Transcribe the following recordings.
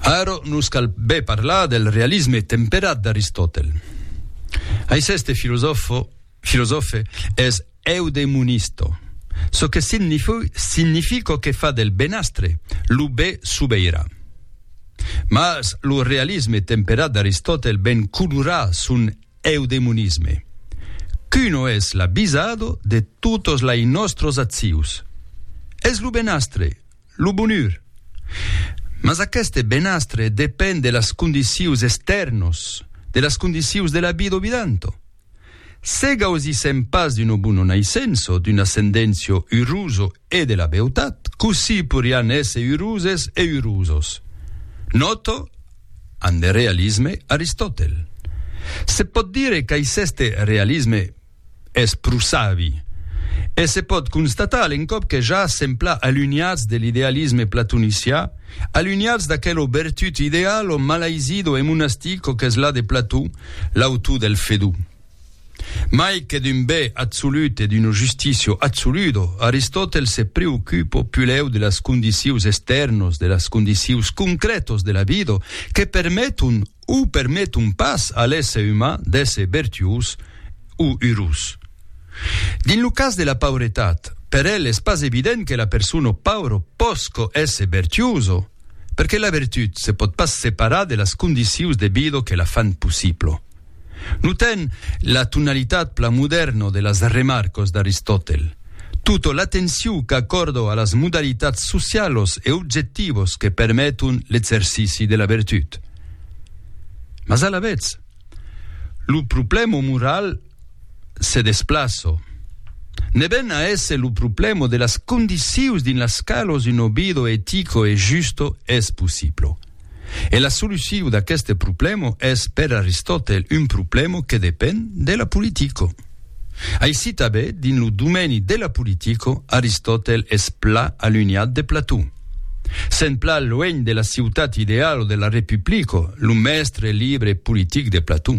Aero nos cal be parlar del realisme temperat d'Aristòtel. Aiceste filosòfo, filosòfe, es eudemonisto, çò que signifi, significo que fa del benastre lo be subeiran. Mas lo realisme temperat d'Aristòtel ben colorà son eudemonisme, qu'uno es l'abisado de totos lai nòstros accius. Es lo benastre Lo bonur. Mas aqueste benastre depend de las condicius estèrnos, de las condicius de la vida obidanto. Se gausissem pas d'uno bono naissenço, d'un ascendencio uruso e de la beutat, cossí porián èsser uroses e urosos? Nòto, an de realisme Aristòtel. Se pòt dire qu'aisseste realisme, es pro savi. E se pòt constatar a l'encòp que ja sempla alunhats de l'idealisme platonicià, alunhats d'aquelo bertut ideal o malaisido e monastico qu'es la de Plató, l'autor del Fedó. Mai que d'un bè atsolut e d'uno justicio atsoludo, Aristòtel se preocupo pulèu de las condicions estèrnos, de las condicions concrètos de la vida que permeton o permeton pas a l'èsser uman d'èsser vertuós o urós. Dins lo cas de la pauretat, per el es pas evident que la persona paura pòsca èsser vertuosa, perque la vertut se pòt pas separar de las condicius de vida que la fan possibla. Notem la tonalitat plan modèrna de las remarcas d'Aristòtel. Tota l'atencion qu'acòrdo a las modalitats socialos e objectivos que permeton l'exercici de la vertut. Mas alavetz, lo problèma moral se desplaço. Ne ven a èsser lo problèma de las condicius dins las calos un obido etico e justo es possiblo. E la soluciu d'aqueste problemo es per Aristotèl un problemo que depen de la politico. Aici tabé, dins lo domeni de la politico, Aristotèl es pla alunhat de Plató. Sent pla luènh de la ciutat ideal o de la republico, lo mèstre libre e politic de Plató.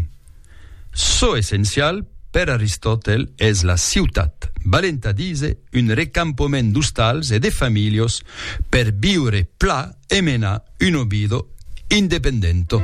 Çò essencial, per Aristòtel, es la ciutat, valent a díser un recampoment d'ostals e de familhos per viure pla e menar un obido independento.